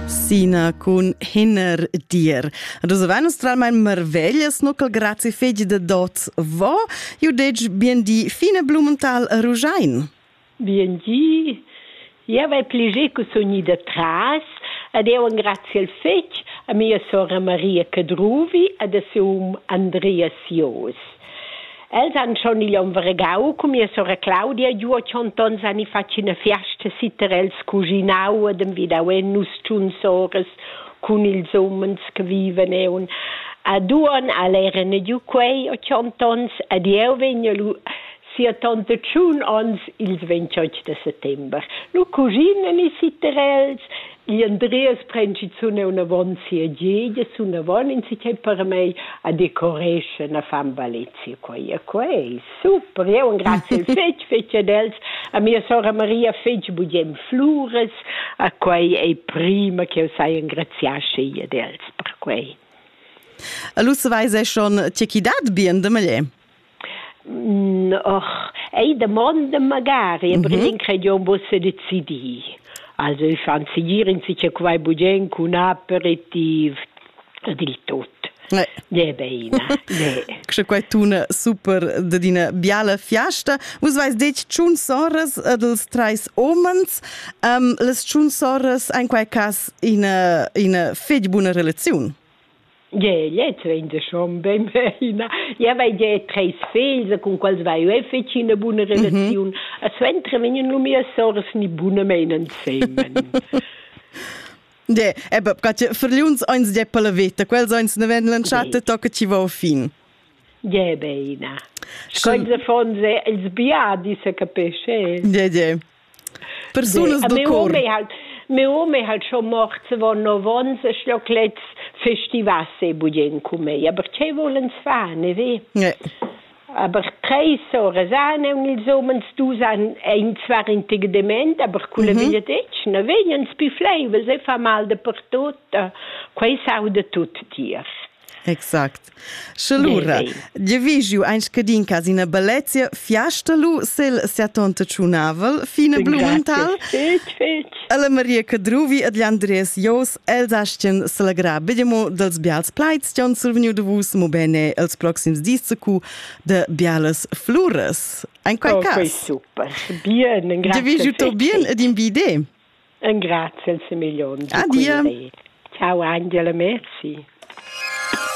Sina cun Hinner dir. Dus venustralmain marveglias no col grazi fegi de dot vo, iu dec bien di fine Blumenthal Rugein. Bien di. Io vai pleger che sono ida tras ed eu engrazio il fetg a mia sora Maria Cadruvi ed a seu um Andrea Sios. Els han schon igl onn vargau cun mia sora Claudia giu a tschient onns han i fatg ina fiasta sitter els cuginau ed envidau en nus tschun soras cun ils umens che viven eun. Ad uon al eran giu quei a tschient onns ed jeu vegn lu sia tante tschun onns ils 28 de settember. Nu cuginen i sitter els, Gli Andreas pren schizun neunavon sia gedia, sunavon in si per mei a decoresce una fan Valezia quei e quei. Super, jeu engrazio fetg fetg ad els. A mia sora Maria fetg bugem flures, a quei ei prima che eu sai engraziar schi ad els per quei. E lu saveis ei schon tgei chi dat bien de meglier. Och ei damonda magari, aber mhm. in credion vosse decidii. Also ich fand sie gieren sich ja quai bugen cun aperitiv dil tot. Ne. Ne beina. Ne. Che quai tuna super de dina biala fiasta. Vus vais detg tschun soras dels treis omens. Um, les tschun soras ein quai cas in una fetg buna relaziun. Gie, lez vegn da schon bein bena. Io vai gie treis figls, cun quals vai io fetg ina buna relaziun. Mm -hmm. A suenter vegnan lu mia soras ni bunamein ensemen. De, ebe, eh verliuns eins de per la veta, quels eins ne ven lanchate tocca ci va fin. Gie beina. Sche ils affons, els biadis, se capesce. De, de. Persunas da cor. Meu om è halt schon mort von novons e schloc lets festivasse budien cu mei. Aber che volens fa, ne ve? Nee. Aber treis sore sane und ils omens du san ein zwar in tig dement, aber culle mhm. veglia detg, ne vegnan spi fleives e fa mal de per tot, quei sau de tut tier. Exact. Sche lura, Gie vi giu ein scadin cas ina bellezia fiasta lu sel siatonta tschunavel, fine Blumenthal. Fetg, fetg. Alla Maria Cadruvi ed gli Andres Jos els astien selagrà bedemo dels bials plaids che han survegniu de vus mo bene els proxims dis cu de bialas flures. Ein quei oh, cas? Super. Bien, grazie. Devi giuto bien ed in bide. Engraziel semegliont. Adia. Ciao Angela, merci.